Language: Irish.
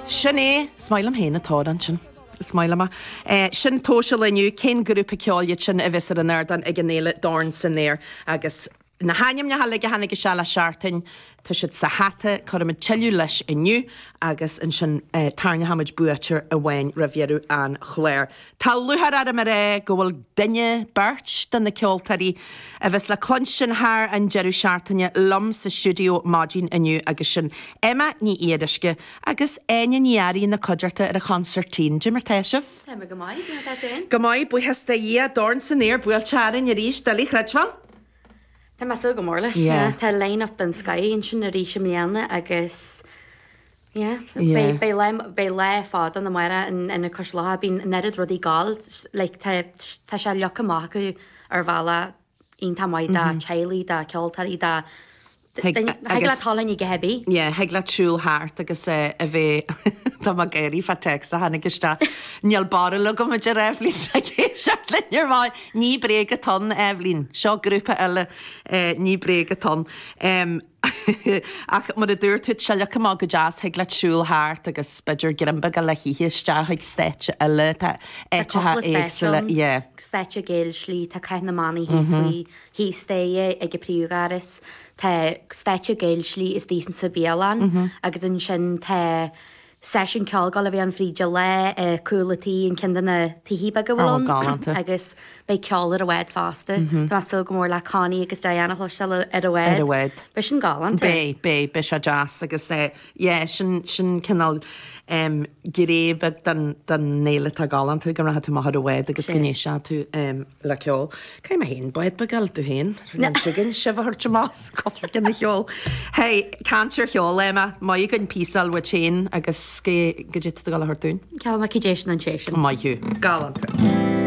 Sin é, is maith liom féin atáid ansin. Is maith liom é. Sin tomhas an lae inniu cén grúpa ceoil iad sin a bheas ar an ardán ag an fhéile Dorn san Aer agus na hainmneacha uilig a tháinig isteach le seachtain, tá siad sa hata, cuirfimid tuilleadh leis inniu agus ansin tarraingeoimid buaiteoir amháin roimh dheireadh an chláir. Tá lúcháir orm a rá go bhfuil duine, beirt, de na ceoltóirí a bheas le cluinstin thar an deireadh seachtaine liom sa stiúideo maidin inniu agus sin Emma Ní Fhíoruisce agus Áine Ní Fhearraigh ina cuideachta ar an chonsairtín. Caidé mar tá sibh! Tá mé go maith, caidé mar tá tú féin? Go maith, buíochas do Dhia. Dorn san aer buailte orainn arís, doiligh a chreidbheáil. Tá mé ag súil go mór leis, yeah. Tá line-up den scoth ansin arís i mbliana agus. Beidh lá fada ann amárach in Ionad Cois Locha, bíonn an oiread rudaí ag gabháil leis, tá sé leagtha amach acu ar bhealach iontach maith do theaghlaigh, do cheoltóirí, do thig leat dul ann ag ithe bidh. Yeah, thig leat siúl thart agus a bheith, tá mé ag gáire fá téacs a tháinig isteach, níl barúil agam a deir Eibhlín ag éisteacht linn ar maidin, ní bréag atá ann Eibhlín, seo grúpa eile, ní bréag atá ann. Ach mar a dúirt tú, tá sé leagtha amach go deas, thig leat siúl thart agus b'fhéidir greim beag le hithe isteach chuig stáitse eile, tá áiteacha éagsúla, yeah. Stáitse Géill Slí, tá Cath na mBannaí thíos faoi, thíos de é ag an bpríomhdhoras, tá stáitse Géill Slí is tá sin sa bhialann agus ansin tá, seisiún ceoil ag gabháil a bheith ann fríd an lá i gCúl an Tí, an ceann de na tithe beaga a bhfuil ann. Ábhar galánta. Agus beidh ceol ar an bhád fosta. Tá mé ag súil go mór le Connie agus Diane a chloisteáil ar an bhád. Ar an bhád. Beidh sin galánta. Beidh, beidh, beidh sé deas agus yeah, sin, sin cineál gné bheag den fhéile atá galánta, go rachaidh tú amach ar an bhád agus go n-éistfidh tú. le ceol. Cé mé féin? Bád beag eile tú féin? Rinne sibh againn sibh a thabhairt amach sa cupla cinn a cheol. Hey, caint ar cheol, Emma, bíodh againn píosa uait féin agus caidé atá tú ag dul a thabhairt dúinn. Ceolfaidh mé Caidé Sin don Té Sin. Maith thú. Galánta.